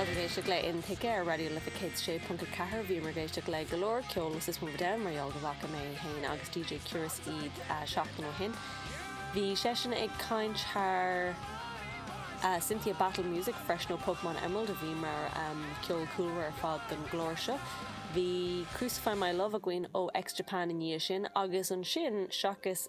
Táimid ag éisteacht le Aontaigh ar Raidió Life 106.4. Bhíomar ag éisteacht le go leor ceol ó System of a Down mar gheall go bhfaca mé féin agus DJ Curious iad seachtain ó shin. Bhí seisean ag caint thar Cynthia Battle Music freisin ó Pokemon Emerald a bhí mar cheol cúlra ar fad don gclár seo. Bhí Crucify My Love againn ó X Japan i ndiaidh sin agus ansin, seachas.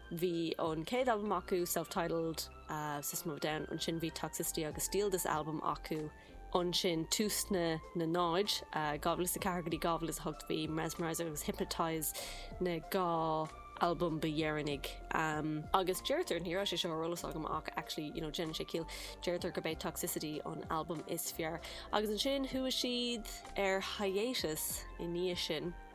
Bhí an chéad albam acu, self-titled, System of a Down, ansin bhí Toxicity agus Steal This Album acu, ansin tús na na náid, 2004 go dtí 2008 bhí Mesmerize agus Hypnotize na dhá albam ba dheireanaigh. Agus deirtear, ní raibh sé seo ar eolas agam ach actually you know déanann sé ciall, deirtear gurb é Toxicity an albam is fearr. Agus ansin chuaigh siad ar hiatus i ndiaidh sin.